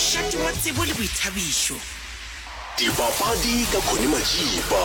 Šatimo, tsebo le boithabišo. Dipapadi ka Connie Majiba,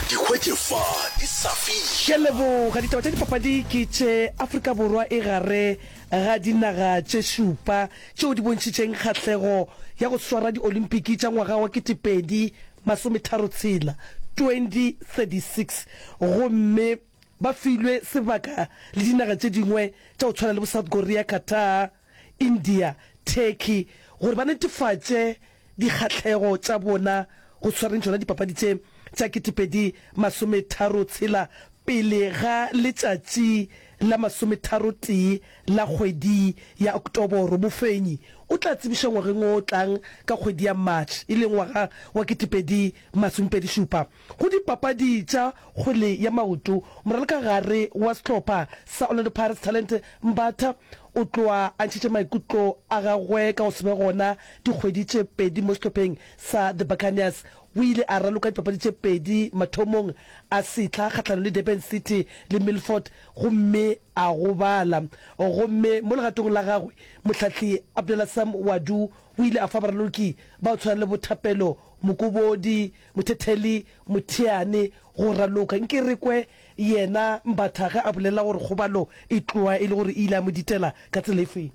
di hwetše fa di sa fiša. Ke a leboga. Ditaba tša dipapadi ke tše. Afrika Borwa e gare ga dinaga tše šupa tšeo di bontšhitšeng kgahlego ya go swara di-Olympiki tša ngwaga wa ketepedi masometharo tshela, 2036, gomme ba filwe sebaka le dinaga tše dingwe tša go tshwana le bo South Korea, Qatar, India, Turkey gore ba netefatše dikgahlego tša bona go tshwareng tšona dipapadi tše tša ketepedi masometharo tshela pele ga letšatši la masometharo tee la kgwedi ya Oktoboro. Mofenyi o tla tsebišwa ngwageng o tlang ka kgwedi ya March e leng ngwaga wa ketepedi masomepedi šupa. Go dipapadi tša kgwele ya maoto, moralokagare wa sehlopha sa Orlando Pirates Talente Mbatha o tloa a ntšhitše maikutlo a gagwe ka go se be gona dikgwedi tše pedi mo sehlopheng sa The Buccaneers. O ile a raloka dipapadi tše pedi mathomong a sehla kgahlanong le Durban City le Milford gomme a gobala. Gomme mo legatong la gagwe, mohlahli Abdullah Sam Wadu o ile a fa baraloki ba go tshwana le bo Thapelo Mokobodi, Mothetheli, Motheane, go raloka nke re kwe yena Mbatha ge a bolela gore kgobalo e tloa e le gore e ile ya mo ditela ka tsela e feng.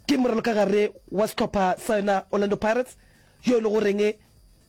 Ke moralokagare wa sehlopha sa yona Orlando Pirates yo e le goreng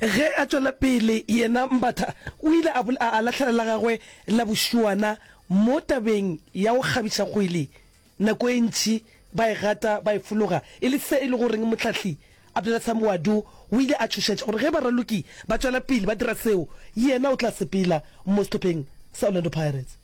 Ge a tšwela pele, yena Mbatha o ile a a lahlela la gagwe la bošuana mo tabeng ya go kgabiša kgwele, nako e ntši ba e gata ba e fologa, e le se e lego goreng mohlahli Abdulasam Wadu o ile a tšhošetša gore ge baraloki ba tšwela pele ba dira seo, yena o tla sepela mo sehlopheng sa Orlando Pirates.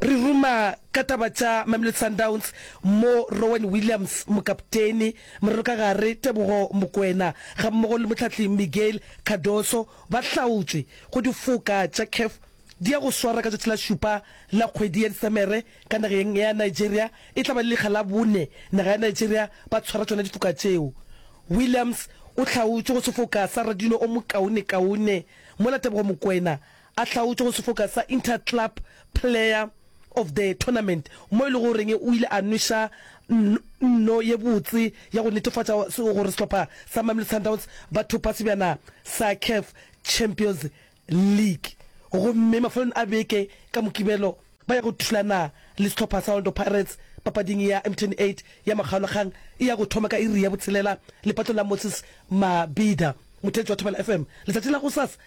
re ruma ka taba tša mamelodi sundowns mo rowen williams mokapteni morero ka gare tebogo mokwena ga mmogo le motlhatli miguel cardoso ba hlaotšwe go difoka tša caf di ya go swara ka tšatši la šupa la kgwedi ya disemere ka nageng ya nigeria e tla ba le lekga la bone naga ya nigeria ba tshwara tšona difoka tšeo williams o hlaotšwe go sefoka sa radino o mokaonekaone mola tebogo mokwena A hlaotšwe go sefoka sa Inter-Club Player of the Tournament mo e lego goreng o ile a nweša nno ye botse ya go netefatša gore sehlopha sa Mamelodi Sundowns ba thopa sebjana sa CAF Champions League gomme mafelelong a beke ka Mokibelo ba ya go thulana le sehlopha sa Orlando Pirates papading ya Mtn 8 ya makgaolakgang e ya go thoma ka iri ya botshelela lepatong la Moses Mabhida. Mothelesi wa Thobela FM, Letšatši la gosasa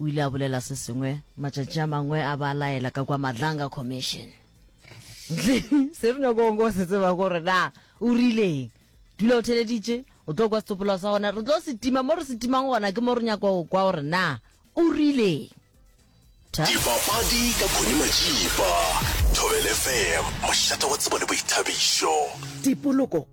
O ile a bolela se sengwe matšatši a mangwe a ba laela ka kwa Madlanga Commission. Ntle, se re nyako go se tseba gore na o rileng. Dula o theleditše, o tlo kwa setsopoloa sa gona, re tlo se tima mo re se timang gona ke mo re nyako go kwa gore na o rileng. Tha. Dipapadi ka Connie Majiba, Thobel FM, mošate wa tsebo le boithabišo. Tipoloko.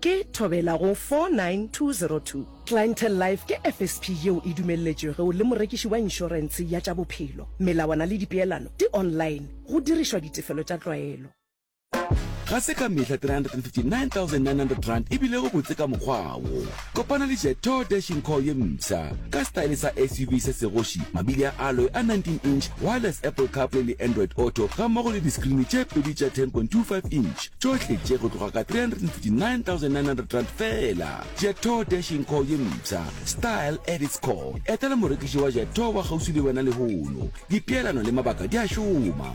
Ke thobela go 49202. Clientele Life ke FSP yeo e dumelletšwego le morekiši wa inšorentshe ya tša bophelo. Melawana le dipeelano di online, go dirišwa ditefelo tša tlwaelo. Ga se ka mehla R359,900 e bilego botse ka mokgwa wo. Kopana le Jetor Dashing Core ye mpsha ka style sa SUV se segoši, mabili a alloy a 19 inch, wireless Apple CarPlay le Android Auto gammogo le diskrini tše pedi tša 10.25 inch. tšohle tše go tloga ka 359,900 rand fela jeto dashing call ye mpsha style at its core etela morekiši wa jeto wa kgauswi le wena lehono dipeelano le mabaka di a šoma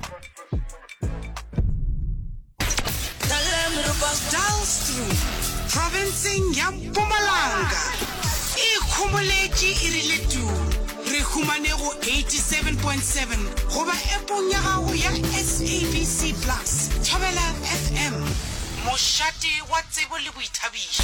provinceng ya mpumalanga e ikgomoletše e rile tu Re humane go 87.7 goba App-ong ya gago ya SABC Plus. Thobela FM, mošate wa tsebo le boithabišo.